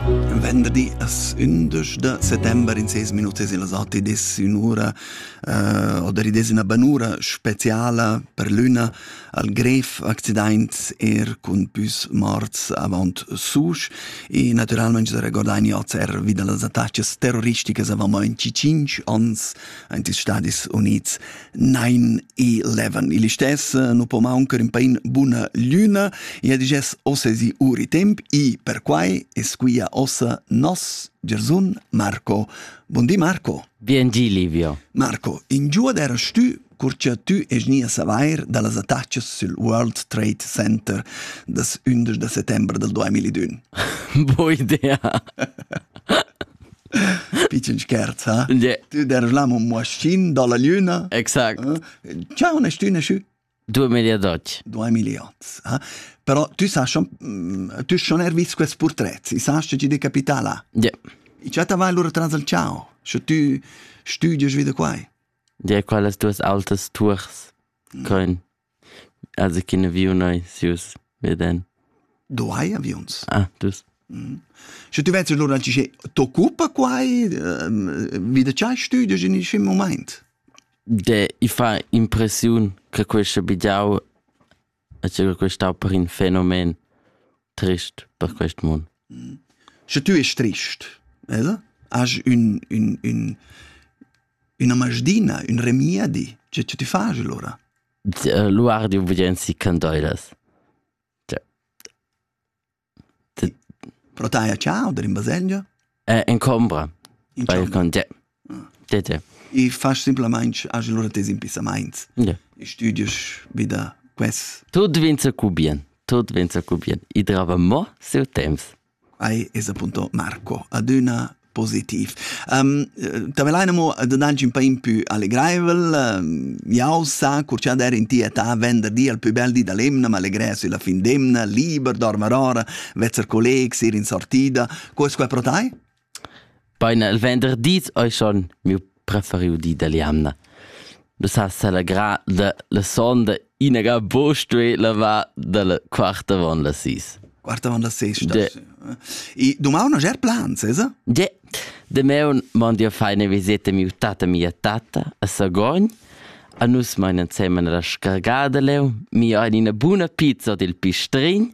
Un venderdi as ündesch da settember in ses minutas in las atti des un'ura uh, oder des una banura speciala per l'üna al grev accidaint er cun püs morts avant susch e naturalmente da recordain ozer wieder las attacas terroristicas avant in cinc ans ant stadis units 9-11. Il istess nu po mauncar in pain buna lüna e ha digess ossesi uri temp i per quai es quia ossa nos Gersun Marco. Buon di Marco. Bien di Livio. Marco, in giuad era stü cur cha tü esni a savair da las attachas sül World Trade Center das 11 da settembre del 2001. Bo idea. Pitschen scherz, ha? Yeah. Tu dervlam un moaschin dalla lüna. Exact. Eh? Ciao, ne stüne schü. Due miliardoci. Due miliards. Eh? Però tu sa, mm, tu schon er vis quest portret, i sa che ti de capitala. Yeah. I già t'avai allora tras al ciao, sche tu studies wieder quai. Ja, quelles duas altes tours, mm. con Also cun aviun ei sius veden. Du hai aviuns? Ah, dus. Mm. Sche tu vets lura tge t'occupa quai, vi da tgei studios in il moment? De, i fa impressiun che questo bigiau e che questo per un fenomen trist per questo mund. Mm. Sche tu es trist, ella? Has un un un Üna masdina, ün remiedi, che cha tü fas lura? L'uardi udienzi candoilas. Pro tai a ciao der in baselgia? Eh, in combra. In combra. Te, te. I fas simplamaing age lura tes impissamaints. Ja. I studies vida ques. Tut vinza cu bien. Tut vinza cu bien. I drava mo siu temps. Ei es appunto Marco, adüna positiv. Um, Tavellein mo dangi un pa in più allegraivel. Jau sa, cur cha der in ti età venderdi al più bel di da l'emna, ma allegrè sülla fin d'emna, liber, dormar ora, vezzer collegs, ir in sortida. Co es quai pro tai? Baina il venderdi ei schon miu preferiu di dalla jamna. Me s'ha selegrà da la sonda inaga buca stuì lavar dalla quart avon las sis. Quart avon las sis. De. E domani non ger plans, esa? De. Demeun mond io fai ne viseta miu tata mia tata a Sagogn. A nus mein ensemen la scargada leu, mi ha ina buna pizza dil pistrin.